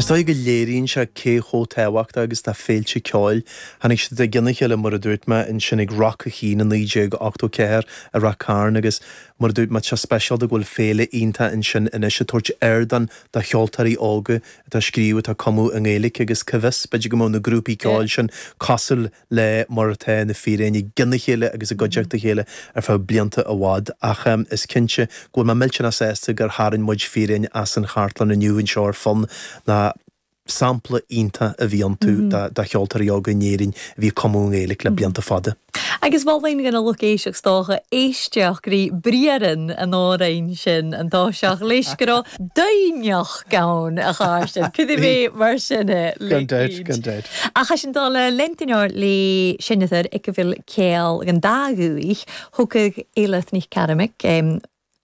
Is dóigh go léiríonn sé cé chomh tábhachtach agus atá féilte ceoil. Tháinig siad i gcionn a chéile, mar a dúirt mé, ansin ag Roc ar Chnoc i 1984 i Rath Cairn agus, mar a dúirt mé, tá sé speisialta go bhfuil féile iontach ansin anois ag tabhairt ardán do cheoltóirí óga atá ag scríobh, atá ag cumadh i nGaeilge agus cá bhfios, b'fhéidir go mbeidh na grúpaí ceoil sin cosúil le mar atá Na Fíréin i gcionn a chéile agus i gcuideachta a chéile ar feadh blianta fada, ach is cinnte go bhfuil mé millteanach sásta gur tharraing muid Fíréin as an chartlann inniu anseo ar Fonn nó sampla iontach a bhí iontu de cheoltóirí óga in Éirinn a bhí ag cumadh i nGaeilge le blianta fada. Agus mholfainn don lucht éisteachta, is dócha, éisteacht le briathra an amhráin sin, an tá siad leis, go raibh doimhneacht. ceann a chur sin. Cad é mé mar sin é? Gan dabht, gan dabht. Ach é sin dála Lentinor le Senator ag a bhfuil céal gan dá dhúigh, thugadh Eilith Nic Caramaig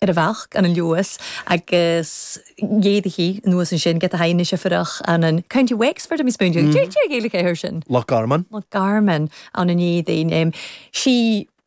ar a bheach an Luas agus d'fhéadfaí anuas ansin get a high anois oifireach ann in County Wexford a bhí spúinne aige. Deir Gaeilge é air sin. Loch Garman. Loch Garman ann in éadain. Sí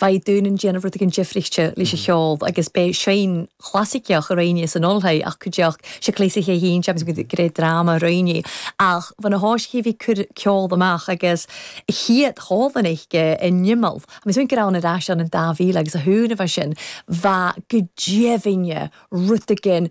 Bheadh dúil ann déanamh rud éigin difrichte leis an cheol agus ba é seinm chlasaiceach a roghnaigh sé san ollscoil ach go dtiocfadh sé clasaicí a sheinnt agus muid ag iarraidh dráma a roghnaí ach bhí na háisithe a bhí ag cur ceol amach agus a chéad chomhad an oiche in imeall agus muid go raibh an ar ais ann in 2000 agus a cúig a bhí sin bheadh go deimhin rud éigin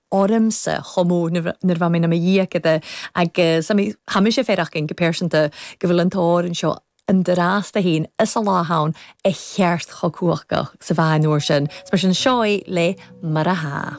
ormsa chomh mór nuair atá mé 'na mo dhiaicéad agus tá mise ag faire acainn go pearsanta go bhfuil an t-ór anseo i m'fhurasta féin is a lá ann a theacht chomh cumhachtach sa mheáin-uair sin. Is mar sin, seo é le Mar a.